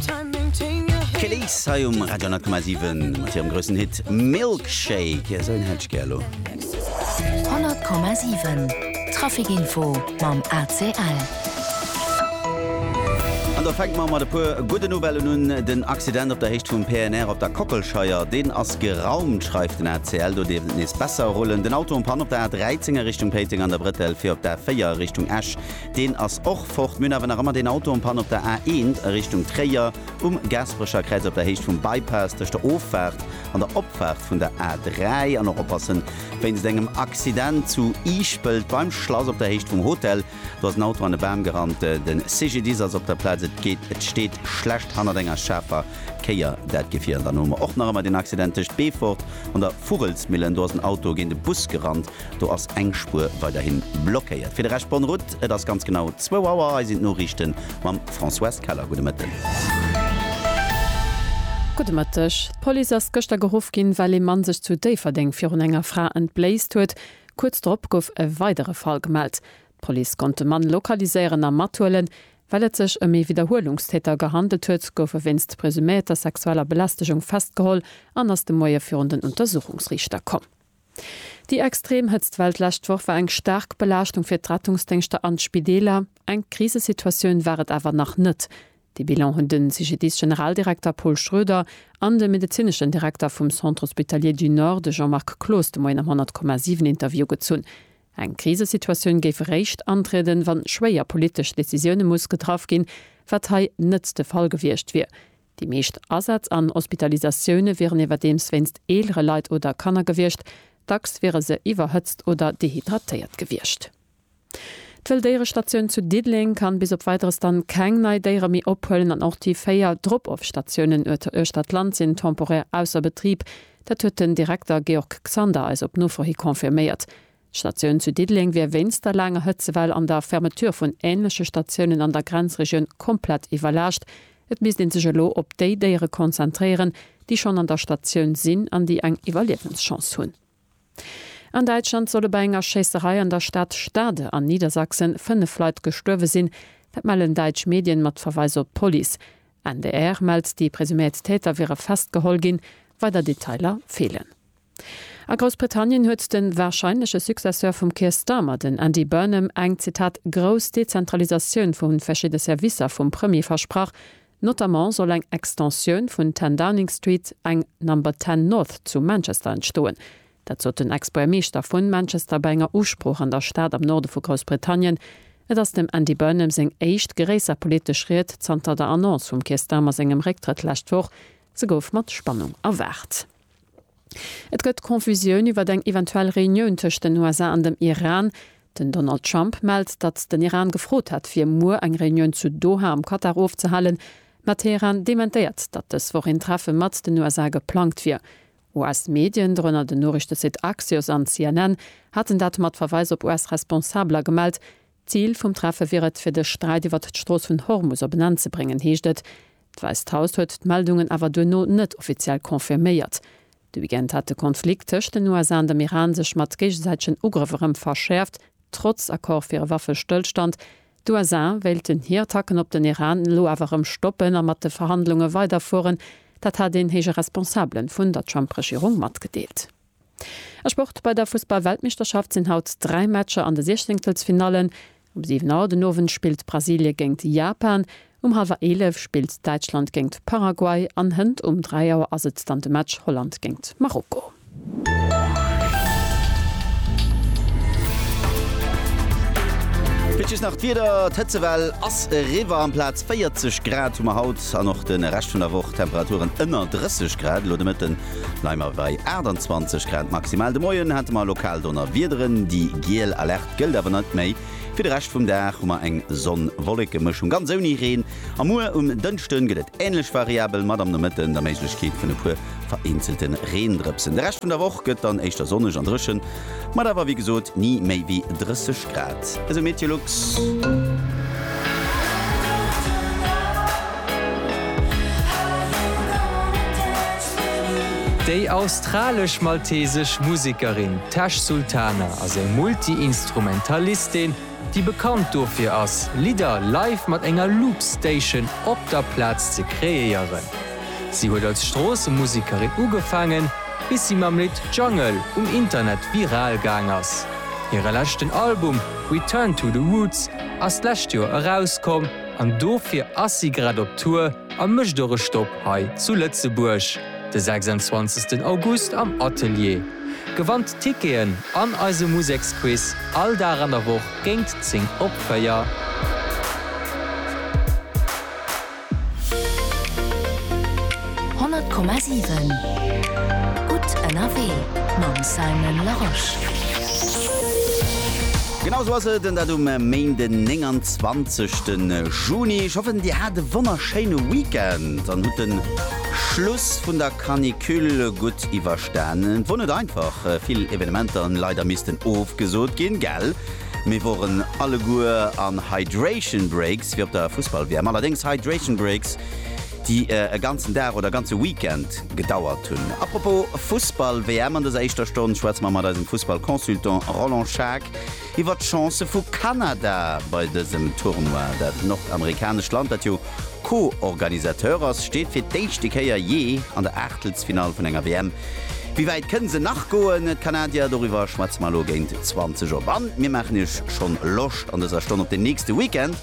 D'Kelis hei um Radio 10,7 mat hirem groussen Hit Milkshake. Esou een hätt ech gär elo. 100,7 Traficinfo mam ACL. An do fänke mer mat e puer gudde Nouvellen un. Den Accident op der Héicht vum PNR op der Kockelscheier, deen ass geraumt, schreift den ACL. Do dierft et nees besser rullen. Den Auto um Pan op der A13 a Richtung Péiteng an der Brettell fir op d'A4 a Richtung Esch. Deen ass och fort. Mir hunn awer nach ëmmer deen Auto en panne op der A1 a Richtung Tréier, um Gasperecherkräiz op der Héicht vum Bypass, tëscht der Offaart an der Opfaart vun der A3. An och oppassen, wéinst engem Accident zu Iischpelt beim Schlass op der Héicht vum Hotel. Do ass en Auto an e Bam gerannt. De CGDIS ass op der Plaz. Et geet, et steet schlecht hannert enger schaarfer Kéier, dat Gefier. An dann hu mer och nach ëmmer deen Accident tëscht Beefort an der Vugelsmillen. Do ass en Auto géint e Bus gerannt. Do ass eng Spuer weiderhin blockéiert. Fir de Rescht bonne route. Et ass ganz genau zwou Auer. Hei sinn d'Noriichten mam Françoise Keller. Gudde Mëtten. Gudde Mëtteg. D'Police ass gëschter geruff ginn, well ee Mann sech zu Déifferdeng virun enger Fra entbléist huet. Kuerz drop gouf e weidere Fall gemellt. D'Police konnt de Mann lokaliséieren a mathuelen. Well et sech ëm ee Widderhuelungstäter gehandelt huet, gouf e wéinst presuméierter sexueller Belästegung festgeholl an ass de Moie virun den Untersuchungsriichter komm. Déi extrem Hëtztwell d'lescht Woch war eng staark Belaaschtung fir d'Rettungsdéngschter an d'Spideeler. Eng Krisesituatioun war et awer nach net. Dee Bilan hunn de CGDIS-Generaldirekter Paul Schroeder an de medezineschen Direkter vum Centre Hospitalier du Nord, de Jean-Marc Cloos, de Moien am 100,7 Interview gezunn. Eng Krisesituatioun géif eréischt antrieden, wann schwéier politesch Decisioune muss getraff ginn, wat hei net de Fall gewiescht wier. Déi meescht Asätz an Hospitalisatioune wieren iwwerdeems wéinst eelere Leit oder Kanner gewiescht. Dacks wiere se iwwerhëtzt oder dehydratéiert gewiescht. D'Wëlldéierestatioun zu Diddeleng kann bis op Weideres dann keng nei Déiere méi ophuelen an och déi véier Drop-off-Statiounen uechter d'Land sinn temporär ausser Betrib. Dat huet den Direkter Georg Xander eis op Nofro hi confirméiert. D'Statioun zu Diddeleng wier wéinst der laanger Hëtzewell an der Fermeture vun änleche Statiounen an der Grenzregioun komplett iwwerlaascht. Et misst ee sech elo op déi Déiere konzentréieren, déi schonn an der Statioun sinn an déi eng Iwwerliewenschance hunn. An Däitschland solle bei enger Schéisserei an der Stad Stade an Niedersachsen fënnef Leit gestuerwe sinn. Dat mellen däitsch Medien mat Verweis op d'Police. NDR mellt, déi presuméiert Täter wiere festgeholl ginn. Weider Detailer feelen. A Groussbritannien huet de warscheinleche Successeur vum Keir Starmer, den Andy Burnham, eng, Zitat, grouss Dezentralisatioun vu verschidde Servicer vum Premier versprach. Notamment soll eng Extensioun vun 10 Downing Street, eng Number Ten North zu Manchester entstoen. Dat sot den Ex-Buergermeeschter vu Manchester bei enger Usprooch an der Stad am Norde vu Groussbritannien. Et ass dem Andy Burnham seng éischt gréisser politesch Ried zanter der Annonce vum Keir Starmer sengem Récktrëtt lescht Woch. Se gouf mat Spannung erwaart. Et gëtt Confusioun iwwert eng eventuell Reunioun tëscht den USA an dem Iran. Den Donald Trump mellt, datt den Iran gefrot hätt, fir muer eng Reunioun zu Doha am Katar ofzehalen, mä Teheran dementéiert, datt dës Woch een Treffe mat den USA geplangt wier. US-Medien, dorënner den Noriichtesite Axios an CNN, haten dat mat Verweis op US-Responsabeler gemellt, D'Zil vum Treffe wier et, fir de Sträit iwwert d'Strooss vun Hormus op en Enn ze bréngen, heescht et. D'Wäisst Haus huet d'Meldungen awer duerno net offiziell confirméiert. De Weekend hat de Konflikt tëscht den USA an dem Iran sech mat géigesäitegen Ugrëff erëm verschäerft, trotz Accord fir e Waffestëllstand. D'USA wéilten hir Attacken op den Iran elo awer erëm stoppen a mat de Verhandlunge weiderfueren. Dat hat een héije Responsabele vun der Trump-Regierung matgedeelt. A Sport, Bei der Fussball-Weltmeeschterschaft sinn haut dräi Matcher an de Siechzéngtelsfinallen. Um 7 Auer den Owend spillt Brasilie géingt Japan, um hallwer 11 spillt Däitschland géingt Paraguay an hënt um 3 Auer ass et dann de Match Holland géingt Marokko. Fir d'just nach d'Wieder, D'Hëtzewell ass eriwwer, amplaz 40 Grad hu mer haut an och de Rescht vun der Woch Temperaturen ënner 30 Grad. Elo de Mëtten Leimer bei 28 Grad maximal. De Moien hate mer lokal Donnerwiederen, déi giel Alerte gëllt awer net méi. Fir de Rescht vum Dag hu mer eng Sonn-Wolleke-Mëschung, ganz ouni Reen, a muer um Dënschde gëtt et änlech variabel, mat am Nomëtten der Méiglechkeet vun e puer vereenzelte Reendrëpsen. De Rescht vun der Woch gëtt dann éischter sonneg an dréchen, Mat awer wéi gesot ni méi wéi 30 Grad, esou Meteolux. Déi australesch-maltesesch Musekerin Tash Sultana ass eng Multi-Instrumentalistin, déi bekannt dofir ass, Lidder live mat enger Loopstation op der Plaz ze kreéieren. Si huet als Stroossemusikerin ugefaangen, bis si mam Lidd Jungle um Internet viral gaang ass. Hire leschten Album Return to the Roots ass d'lescht Joer erauskomm an dofir ass si grad op Tour a mécht och e Stopp hei zu Lëtzebuerg de 26 August am Atelier. Gewannt Ticketen an eise Museksquiz all Dag an der Woch géint 10 op 4. Honnert Komma siwen Gutt ënnerwee mam Simon Larosche. Genau sou ass et, dat um Méinden den 29 te Juni. Ech hoffen dir hat e wonnerschéine Weekend an hutt de Schluss vun der Canicule gutt iwwer. Dann et wor net einfach, vill Evenementer en leider missten ofgesoot gin, gell? Mir woren alleguer an Hydration Breaks fir op der Fussball WM, allerdéngs Hydration Breaks déi e ganzen Dag oder e ganze Weekend gedauert hun. A propos Fussball WM, an dëser éischter Stonn schwätze mer mat eisem Fussball Consultant Roland Schaack, iwwert d'Chancë vu Kanada bei dësem Tournoi. Dat nordamerikanescht Land, dat jo Co-Organisateur ass, steet fir d'éischte Kéier jee an der Aachtelsfinall vun enger WM. Wéi wäit kënne se nach goen, d'Kanadier? Doriwwer schwätze mer elo géint 20 op. An mir maachen Iech schonn Loscht an dëser Stonn op den nächste Weekend,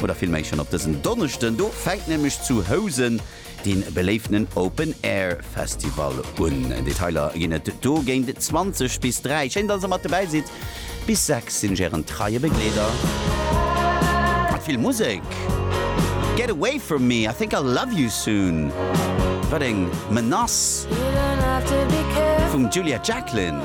oder villméi schonn op dësen Donneschden. Do fänkt nämlech zu Housen. dee beléiftenen Open Air Festival un. Detailer ginn et do géint 20 bis 3. Schéin dass der mat dobäi sidd. Bis 6 sinn ech ären treie Begleeder mat vill Musek. Get away from me, I think I'll love you soon, wat eng Menace vum Julia Jacklin.